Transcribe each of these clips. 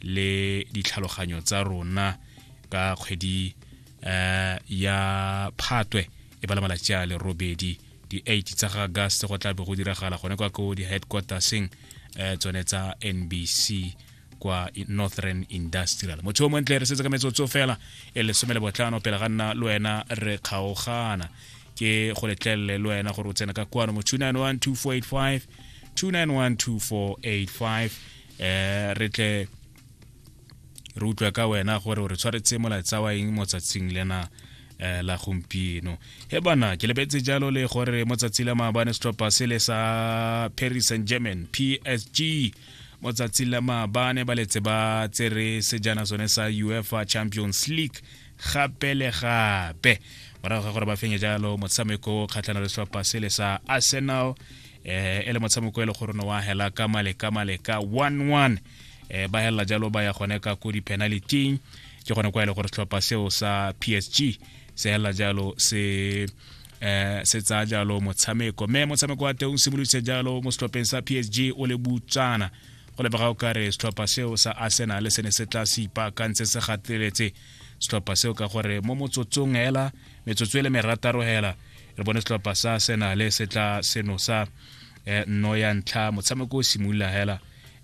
le ditlhaloganyo tsa rona ka kgwedi eh, ya phatwe e ba le malatsi a le robedi di-eight tsa ga gas go tla be go diragala gone kwa ko di-headquarterseng eh, tsone tsa nbc kwa northern industrial motho o montle re setse ka metsotso fela e lesome le botlhano pele ga nna le wena re kgaogana ke go letlelele le wena gore o tsena ka kwano mo 291 2485 291 2485 eh re tle re utlwa ka wena gore re tshwaretse molaetsa wa eng mo tsatsing lena eh, la gompieno he bana ke lebetse jalo le gore mo tsatsi la maabane setlhopha se le sa paris saint german psg mo tsatsi la maabane ba letse ba tsere sejana sone sa uefa champions league gape le gape morago ga gore ba fenye jalo motshameko kgatlhana le setlhopha se le sa arsenal eh, e le motshameko e le gore ne wa hela ka male ka male ka 11 eh, ba helela jalo ba ya gone ka ko di-penalityng ke gone kwa e le gore setlhopha seo sa psg se helela jalo se eh se tsaya jalo motshameko mme motshameko wa teng o simoloditse jalo mo setlhopheng sa psg o le butsana go lebega o kare setlhopha seo sa arsenal se ne se tla se ipaakantse se gateletse setlhopha seo ka gore mo motsotsong hela metsotso e le merataro hela re bone setlhopha sa senale se tla senosa eh, nno ya ntlha motshameko o simolola hela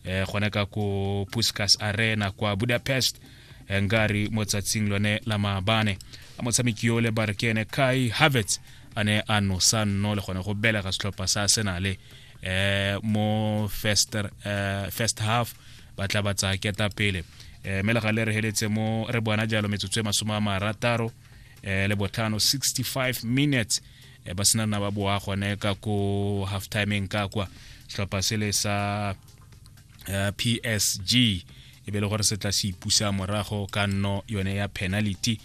eh, gone ka ko puskas arena kwa budapest eh, nkare mo tsatsing lone la maabane a motshameki yo le barkene kai havets a ne a nosa nno le gone go belega setlhopha sa senale eh mo first eh, first half ba tla ba tsaya keta pele eh mme le ga le re heletse mo re bona jalo metsotso e masome a marataro eh, le botlhano 65 minutes eh, ba sena nna ba boa gone ka ko half timeng ka kwa setlhopha se le sa eh, psg e be le gore se tla se ipusa morago ka nno yone ya penalty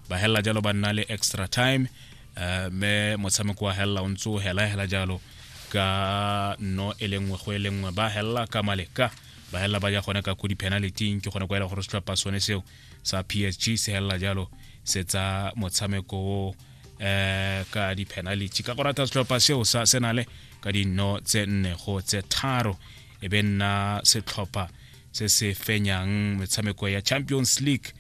ba hella jalo ba nna le extra time eh, me motshameko wa hella o ntse o hela hela jalo ka no e le nngwe go e le nngwe ba hella ka maleka ba hella ba ja gone ka ko di-penalty ke gone kwa e le gore setlhopha sone seo sa psg se helela jalo se tsa motshameko o eh ka di-penalty ka go rata setlhopha seo sa senale ka dino tse nne go tse tharo e be nna setlhopha se se fenyang metshameko ya champions league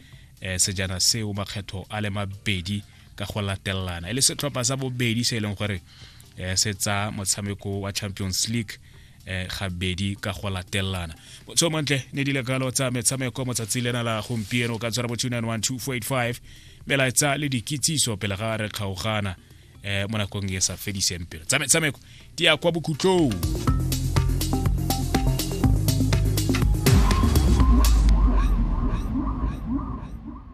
eh, sejana seo makgetho a le mabedi ka go latelana e le setlhopha sa bobedi se e leng gore eh, se tsa motshameko wa champions league eh gabedi ka go latelana so mantle ne di lekalo tsa metshameko motsatsi lena la gompieno ka tshwara bo 2912485 melaetsa le dikitsiso pele ga re kgaogana eh mo nakong e sa fediseng pelo tsa metshameko di ya kwa bokhutlong